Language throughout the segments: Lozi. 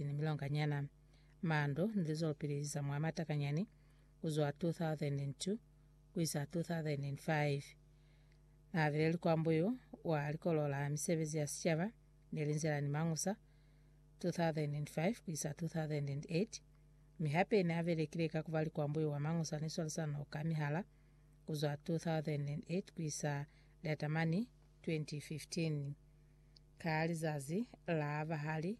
ni milonga nyana, mando ni lizwelopili za mwa matakanyani kuzwa 2002 kuisa 2005. Naabile likwambo yo wa Likolo la Misebezi ya Sicaba ne linzela ni Mangusa 2005 kuisa 2008, mi hape naabelekile ka kuba likwambo yo wa Mangusa ni Swalisano ka Mihala kuzwa 2008 kuisa Liatamani 2015. Ka lizazi la bahali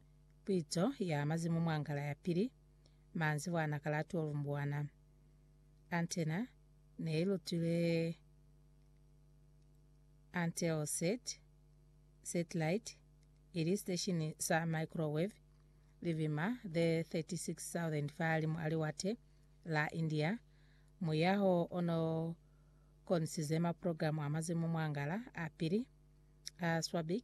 Puizo ya mazimu mwa ngala ya pili, manzibwa na ka la 12 Mbwana. Antena ne i lutilwe Anteosat satellite, ili siteshini sa microwave libima the 36,000 fahalimu a liwate la India. Muyaho o no konisize maprogramu a mazimu mwa ngala a pili a Swabik,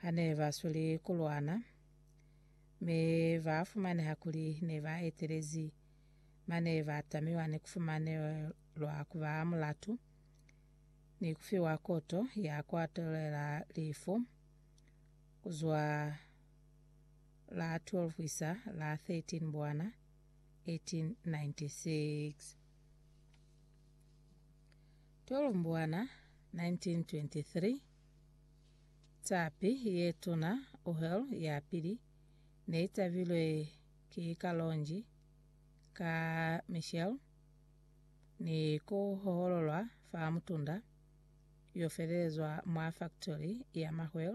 ha ne ba sweli ku lwana, mi ba fumaneha kuli ne ba etelezi mane ba tamiwa ni ku fumanelwa ku ba mulatu ni ku fiwa koto ya ku atelela lifu ku zwa la 12 ku isa la 13 Mbwana 1896. Tolombwana, 1923 Tapi ye tuna, Uhel ya Pili, ne i tabilwe ki kalonji ka Michel ni ku hohololwa fa mutunda yo felelezwa mwa faktori ya mahwel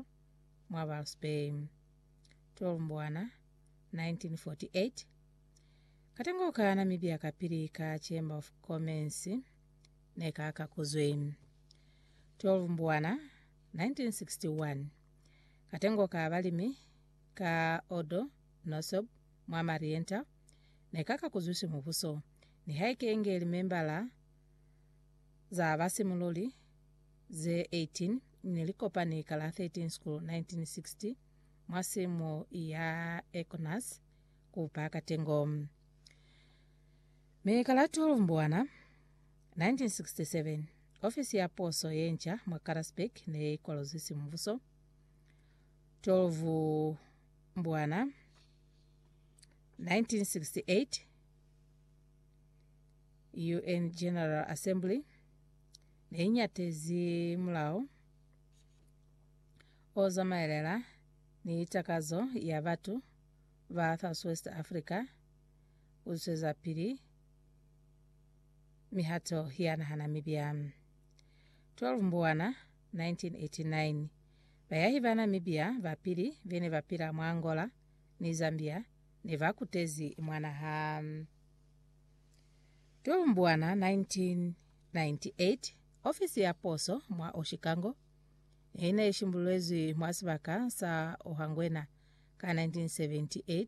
mwa Walvis Bay. Tolombwana, 1948 Katengo ka Namibia kapili ka Chamber of Commerce. ne ka ka kuzwi 12 mbuwana 1961 katengo ka balimi ka odo nosob mwa marienta ne ka ka kuzwisi mubuso ni haikenge limembala za basimululi ze 18 ne likopani ka la 13 school 1960 mwa simo ya econas kupa katengo Mi ka la 12 Mbwana 1967, ofisi ya poso ye nca mwa Karasburg ne i kwalozwi simubuso. 12 Mbwana 1968, UN General Assembly ne i nyatezi mulao o zamaelela ni takazo ya batu ba Southwest Africa u zwezapili mihato ya naha Namibia. 12 Mbwana 1989, bayahi ba Namibia ba pili be ne ba pila mwa Angola ni Zambia ne ba kutezi mwa naha. 12 Mbwana 1998, ofisi ya poso mwa Oshikango ne i ne i shimbululezwi mwa sibaka sa Ohangwena ka 1978,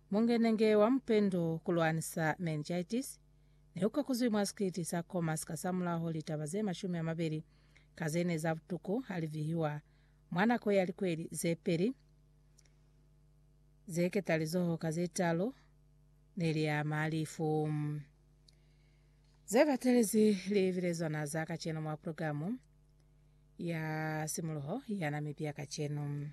Mungenenge wa mupendu ku lwanisa meningitis ne u kakuzwi mwa sikiliti sa Khomas kasamulaho litaba ze mashumi a mabeli ka ze ne za butuku ha li vihiwa mwa nako ya likweli ze peli ze ketalizoho ka ze talu ne li ama lifu ze batelezi libilezwana za kacenu mwa programu ya simuluho ya Namibia Kacenu.